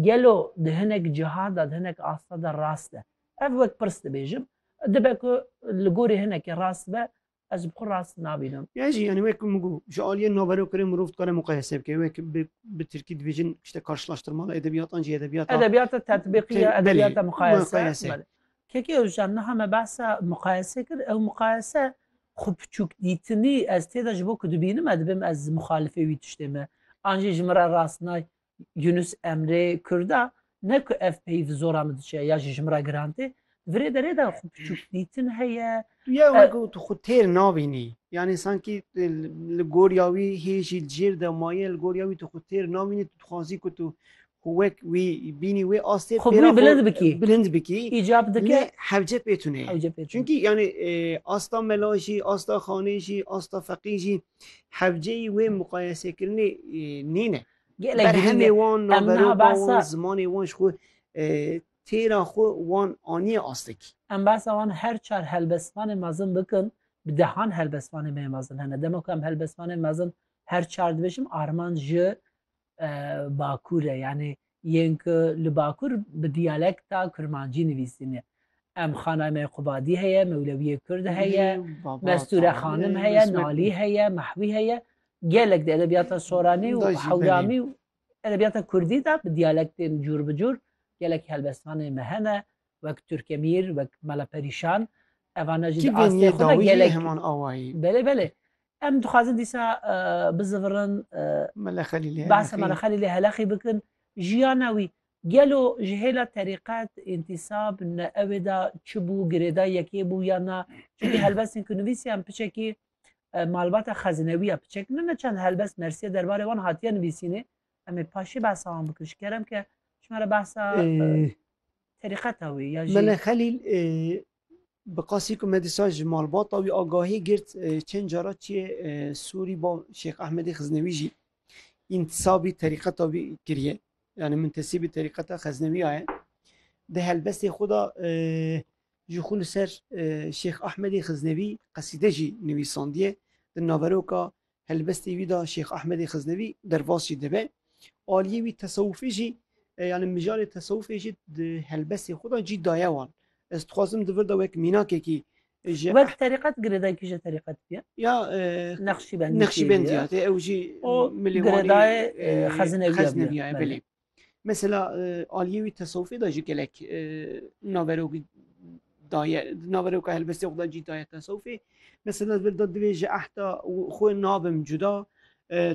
Gelo di hinek cihan de, di hinek asta de rast e? Ev wek pirs dibêjim. Dibe ku li gorî hinekê rast be, ez bi xwe rast nabînim. Ya jî yanî wek ku min got, ji aliyê naverokirê mirov dikare muqayese bike. Wek bi bi tirkî dibêjin işte karşılaştırmalı edebiyat an jî edebiyata Edebiyata tetbîqî ya edebiyata belê, muqayese. muqayese. Belê. Keke Ozcan niha me behsa muqayese kir. Ew muqayese xwe piçûkdîtinî ez tê de ji bo ku dibînim e dibim ez muxalifê wî tiştê me. An jî ji min re rast nayê. Yunus Emre Kurda ne ku ev peyî bi zora min diçe ya jî ji min re giran tê virê derê de xwe piçûk dîtin heye Tu ya wek û tu xwe têr nabînî yanî sankî li goriya wî hê jî li jêr de maye li goriya wî tu xwe têr nabînî tu dixwazî ku tu xwe wek wî bînî wê astê Xwe pêra wî bilind bikî. bilind bikî Îcab lê dike hewce pê tune ye. hewce pê tune. Çünkî yanî e, asta mela jî, asta xanê jî, asta feqî jî hewceyî wê muqayesekirinê e, nîne. Gelek girîng e. Berhemê wan, Em niha naveroka wan, behsa zimanê wan ji xwe têra xwe wan aniye astekî. em behsa wan her çar helbestvanên mezin bikin, bi dehan helbestvanên me yên mezin hene. Dema ku em helbestvanên mezin her çar dibêjim armanc ji Bakur e. Yanî yên ku li Bakur bi diyalekta kurmancî nivîsîne. Em xanayê me yê Qubadî heye, Mewlewîyê Kurd heye, Mestûre Xanim heye, Nalî heye, Mehwî heye. Gelek de edebiyata Soranî û Hewlamî û edebiyata Kurdî de bi diyalektên cûr bi cûr gelek helbestanê me hene wek Turkemîr, wek Mala Perîşan evane jî di astê xwe de gelek heman awayî. Belê belê. Em dixwazin dîsa e, bizivirin e, Mele Xelîlê behsa Mala Xelîlê Helexî bikin jiyana wî gelo ji hêla terîqet întisab ne ewê de çi bû girêda yekê bû ya na çi helbestên ku nivîsiyan piçekî malbata xezinewî ya piçek ne ne çend helbest mersiye derbarê wan hatiye nivîsînê em ê paşê behsa wan bikin ji kerem ke ji me re behsa terîqeta wî ya jî Mele Xelîl bi qasî ku me dîsa ji malbata wî agahî girt çend cara çiyê Sûrî ba Şêx Ehmedê Xiznewî jî întisabî terîqeta wî kiriye yani muntesibî terîqeta xeznewî yaye di helbestê xwe de Ji xwe li ser Şêx Ahmedê Xiznevî qesîde jî nivîsandiye. Di naveroka helbestê wî de Şêx Ahmedê Xiznevî derbas jî dibe. Aliyê wî tesewufê jî yani mijarê tesewufê jî di helbestê xwe de cî daye wan. Ez dixwazim di vir de wek mînakekî ji Wek terîqet girêdayê kî ji terîqet bûye? Ya Neqşîbendî Neqşîbendî ya tê ew jî û girêdayê Xezinevî ya belê. Mesela aliyê wî tesewufê de jî gelek naverokî daye naveroka helbestê xwe de cî daye tesewufê. Mesela bir da divê ji ehda xwe nabim cuda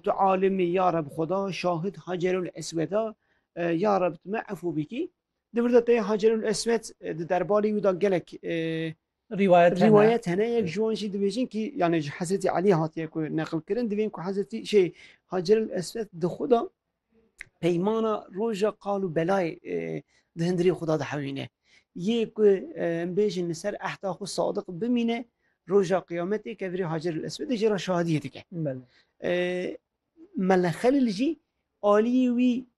tu alimî ya reb xwe da şahid hacerul esweda ya reb tu me efû bikî. Di vir de tê hacerul eswed di derbarê wî da gelek Rîwayet hene. Rîwayet hene yek ji wan jî dibêjin kî yanê ji Hezretî Elî hatiye ku neqilkirin divên ku Hezretî şey Haceril Eswed di xwe de peymana roja qal û belayê di hindirê xwe de dihewîne. Yê ku em bêjin li ser ehda xwe sadiq bimîne roja qiyametê kevirê Haceril Eswedê jê re şahidiyê dike. Mele Xelîl jî aliyê wî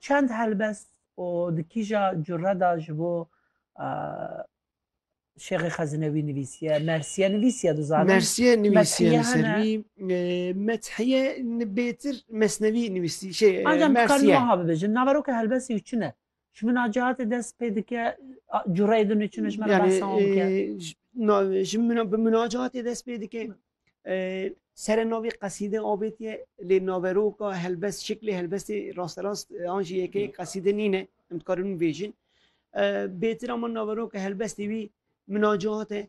Çend helbest û di kîja cure de ji bo Şêxê Xezinewî nivîsiye, Mersiye nivîsiye dizanim. Mersiye nivîsiye li ser wî Methiye bêtir Mesnevî nivîsî. Ancam dikarin wiha bibêjin naveroka helbestê wî çi ne? Ji min a cihatê dest pê dike cureyê din û çinê ji me re behsa wan bike. Yani ji min bi min a cihatê dest pê dike. Serê navê qesîde avêtiye lê naveroka helbest şiklê helbestê rasterast an jî yekê qesîde nîne em dikarin bibêjin. Bêtir ama naveroka helbestê wî min a cihate